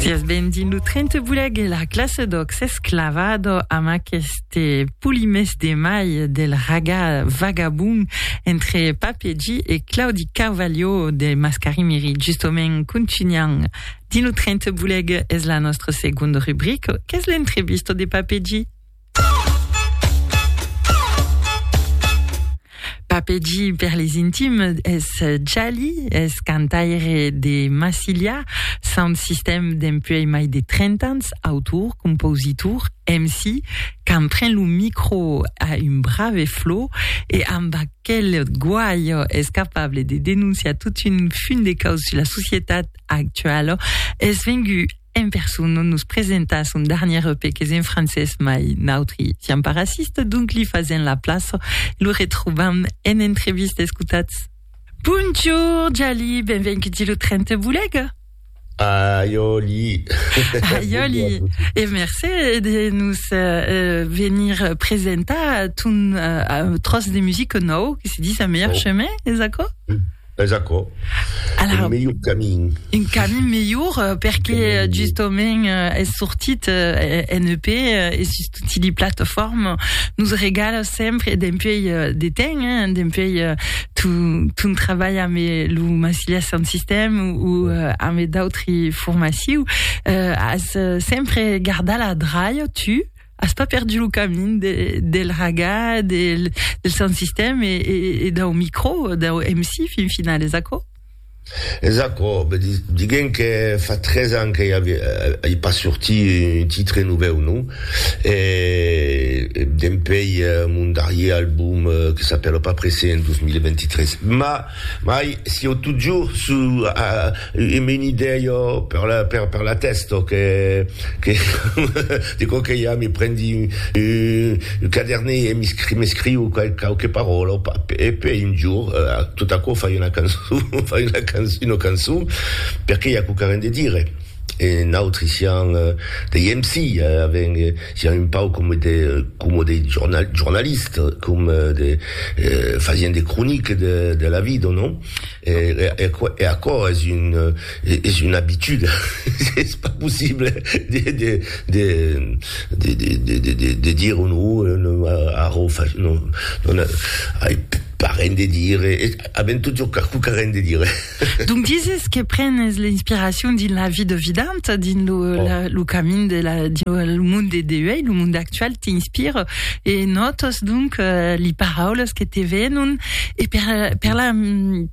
Sias ben dins lo tren te voleg e la classe d'òc s'es clavada amb aqueste polimès de mai del ragà vagabon entre Pape G e Claudi Carvalho de Mascarimiri. Justement, contunham dins lo tren te voleg, es la nòstra segonda rubrica qu'es l'entrevista de Pape G. Papegi per les intimes es Jali, es cantaire de Massilia, sound system dempuèi mai de 30 ans, autor, compositor, MC, quand pren lo micro a un brave flot e amb aquel guaio es capable de denonciar tot un fum de caus sus la societat actuala, es vengut En person nos presenta son darnièr EP qu'es en francés mai nautri siam pas racistes donc li fasèm la plaça e lo retrobam en entrevista escotatz. Bonjour Jali, benvenguti lo tren te bolega. Aiòli. Aiòli e mercé de nos venir presentar ton tròç de musica nòu que se dis A Meilleur Chemin, es aquò? Es aquò. Alara, un melhor camin. Un camin melhor, euh, perque euh, justament euh, es sortit euh, en EP euh, e sus tutti li plataformes nos regala sempre dempuèi euh, de temps, hein, dempuèi euh, ton, ton trabalh amb lo Massilia Sound System ou euh, amb d'autri formaciu, euh, as euh, sempre gardat la draia, tu, As pas perdu lo camin de, del raga, del, del sound system e, e, e dau micro, dau MC fin final, es aquò? Es aquò, be di, diguem que fa tres ans que i avia, i pas sorti un titre novèu, non? E, e dempei mon darrier album que s'apèla Pas pressé en 2023. Mas, mai, sieu totjorn su, a, E me n'i dèia per la per la tèsta que que de quauque ja me prendi un cadernet e m'escriu quauque paròla e pei un jorn tot aquò fai una cançon fai una cançon una cançon perque i a quauque arren de dire e nautri siam dei MC avèm siam un pauc coma de coma dei jornalistes coma de fasien de croniques de la vida non? E aquò es una abitude, es pas possible de dire o non, arrò ai pas ren de dire, avèm totjorn qualqu'a ren de dire. Donc dises que prenes l'inspiracion dins la vie de vident, dins lo camin, dins lo monde de uèi, lo monde actual. actual t'inspire e nòtos donc eh, li paraules que te venon e per, per, la,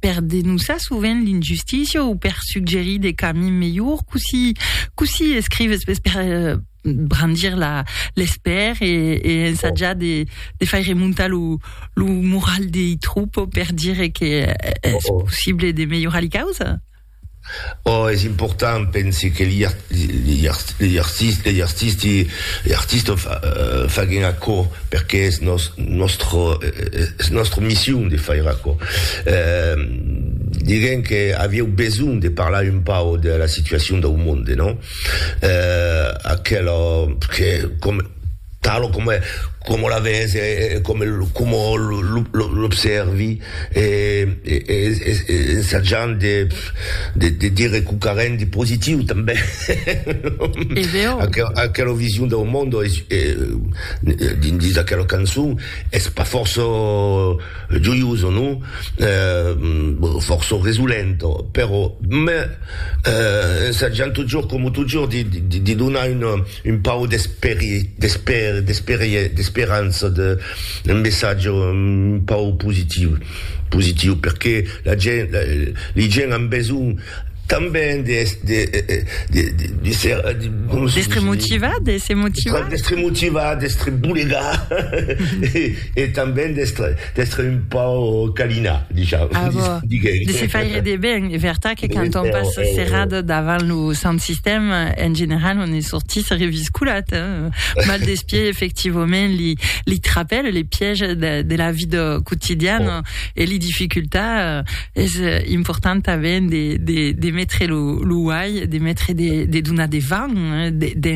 per denoçar sovent l'injustícia o per suggerir de camins melhors, cossí, cossí escrives per, per eh, brandir la, l'espèr e, e ensatjar de, de faire remontar lo, lo moral dei troupes per dire que eh, es possible de melhorar li causes? Ò es important, pensi que li artisti faguen aquò perqué es nòstra mission de faire aquò. Diguem que avieu besonh de parlar un pauc de la situacion dau monde, non? Aquela, que, com. Talo coma coma la ves e e coma coma l'obsèrvi e e ensajant de de de dire quauquarren de positiu tanben aquela vision dau monde e dins aquela cançon es pas fòrça joiosa non? fòrça resolenta però ensajant totjorn coma totjorn de donar una Un pauc d'esperança, un messatge un pauc positiu, positiu perqué la gent, li gent an besonh tanben de d'estre motivat, de se motivar, d'estre motivat, d'estre bolegat e tanben d'estre D'estre un pauc calinat, disham, ah, bon. diguem. De se faire de ben, e vertat que quand on passe eh, serrat eh. davant lo sant sistèm, en general, on est sorti se revisculat. Hein? Mal d'espier, effectivament, li, li trapèl, les pièges de, de la vida quotidiana oh. e li dificultats, eh, és eh, important tanben de, de, de mettre lo, lo uai, de mettre de, de donar de vent, eh, de, de,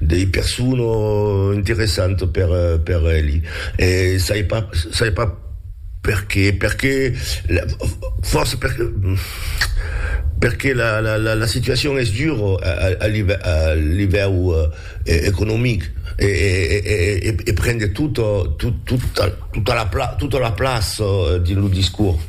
Dei persona interessanta per per eli e sai pas sai pas perqué perqué fòrça perqué perqué la la la situacion es dura a livèu economic e e e prende tota tota la plaça dins lo discors.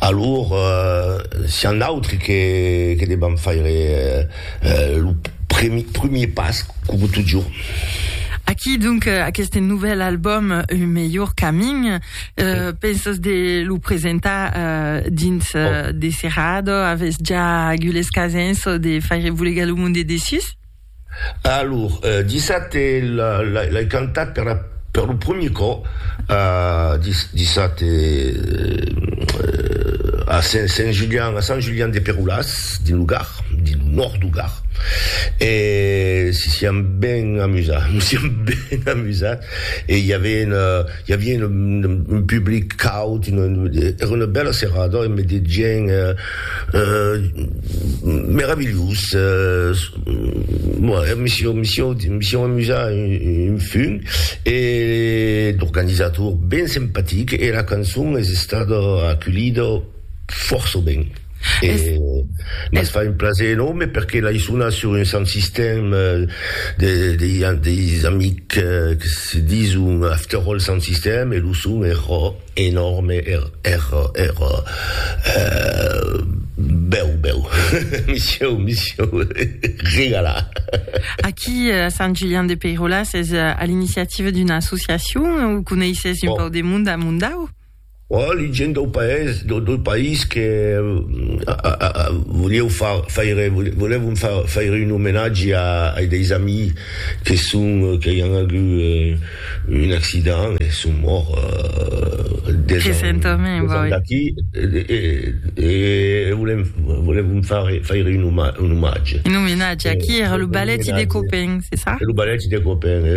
Alor, s'i a n'autri que que debam faire lo premier pas, coma totjorn. Aquí donc aqueste novèl album Un melhor camin, pensas de lo presentar dins de serrada? Avètz ja agut l'escasença de faire volegar lo monde dessus? Alor, dissabte l'ai cantat per lo premier còp, dissabte, a Saint Julian, a Sant Julian de Perolàs, dins lo Gard, dins lo nòrd du Gard, e si siam ben amusat, nos siam ben amusat, e i aven, I aviá un public caut, èra una bèla serada e me dejèn meravilhós, me siá amusat un fum e l'organizator ben simpatic e la cançon es estada aculhida fòrça ben. E mas fa un plaser enòrme perque l'ai sonat sur un sant sistèm de deis amics que se dison After All Sant Sistèm e lo son èra enòrme, èra èra bèu bèu. Me sieu me sieu regalat. Aquí a Sant Julian de Peiròla s'es a l'iniciativa d'una associacion o coneisses un pauc de monde a Mondau? Ò li gent dau paès, dau país que volieu far faire, volèvon far faire un omenatge ai deis amis que son, qu'ai an agut un accident e son mòrts deus ans d'aquí e volèm, volèvon far faire un omatge. Un omenatge a qui? Era lo balèti de Copèn, c'est ça? Era lo balèti de Copèn.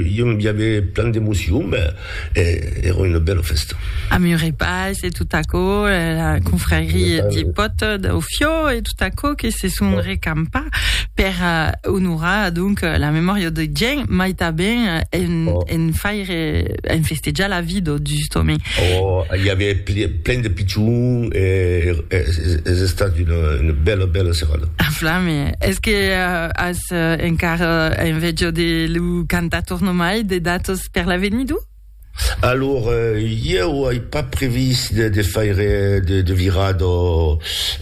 Ieu i avè plan d'emocion, ben. E èra una bèla fèsta. A Muret Pas e tot aquò, la confrarie de pòt dau Fiò e tot aquò que se son recampa per onorar donc la memòria de Gien, mai tanben en faire, en festejar la vida justament. Oh, i avè plen de pichons e es estat una bèla, bèla serada. A flame! Es que as encara enveja de lo cantator nomai de datos? per l'avenir d'u? Alor, ieu ai pas previst de, de faire de, de virar do...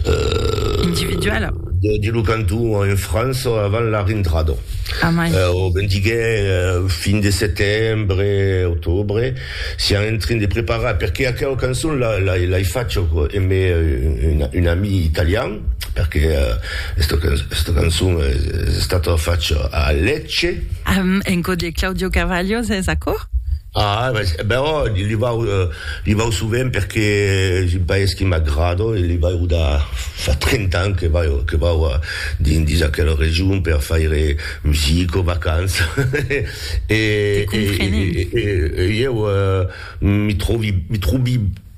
Euh, Individuala. de, de lo canton en França avant la rentrada. Amai. Euh, o ben diguè, euh, fin de setembre, octobre, siam en train de preparar, perque aquela cançon la, l'ai, l'ai facha emè un, un, un ami italian, perque esta cançon es estata facha a Lecce. En cò de Claudio Carvalho es aquò? Ah, però li vau, li vau sovent perque es un país que m'agrada e li vau da fa 30 ans que vau, que vau dins aquela region per faire musica, vacanças e ieu mi trovi, mi trovi.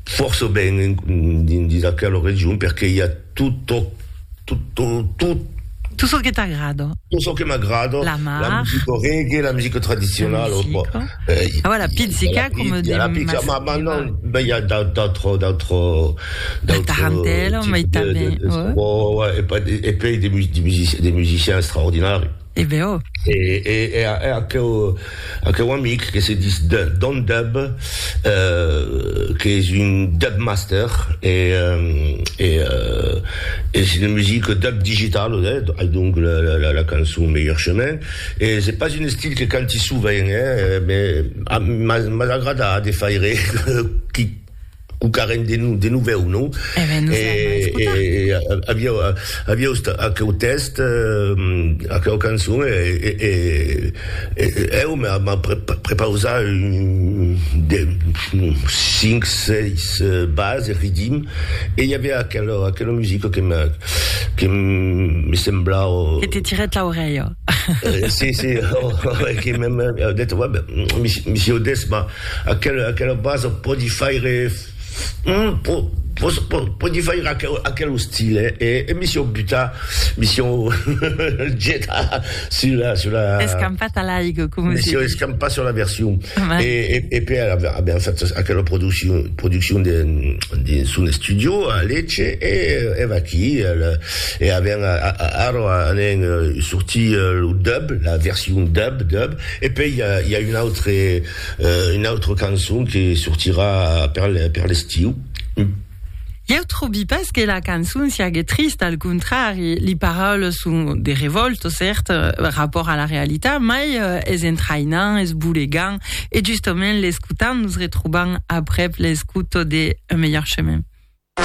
fòrça ben dins aquela region perque i a tot çò tot çò que t'agrada tot çò que m'agrada la mar la musica reggae la musica tradicionala la musica e voilà la pizzica coma diem la pizzica ma maintenant ben i a d'autres d'autres tarantella mai tanben e pei de musiciens extraordinaris E be ò. E, e, e a, e aqueu, aqueu amic que se dis de, Don Dub, euh, qu'es un Dub Master, e, e, euh, es une musique Dub digital, eh, ai donc la, la, la cançon Meilleur Chemin, e se pas un estil que canti sovent, eh, mais, a, mas, mas agrada de faire, qui, Cucarem de nu, de novèu, non? E ben, nos hem a escotar. E aviau, aviau estat aqueu tèxt, aqueu cançon, e eu m'ha prepausat de cinc, seis bases, riddim, e i aviá aquela, aquela musica que me, que me semblava. Que te tirèt l'aurelha. Si, si, que m'he dit, va ben, mi si audés, ma. Aquela aquela basa pòdi faire po po po pòdi faire aquel aquel ostil eh e e mi siò butar mi siò getar sur la sur la Escampat a l'aigo coma mi siò escampat sur la version e e e per aver aver fait aquela produccion produccion de de son estudio a Lecce e e vaquí al e aver ara anem sortir lo dub la version dub dub E pei i a un autre un autre cançon que sortirà per per l'estiu. Ieu trobi pas que la cançon siague trista, al contrari, li paraules son de revòlta, cèrt, rapòrt a la realitat, mai es entraïnant, es bolegant, e justament l'escotant nos retrobam aprèp l'escouta de Un melhor chemin.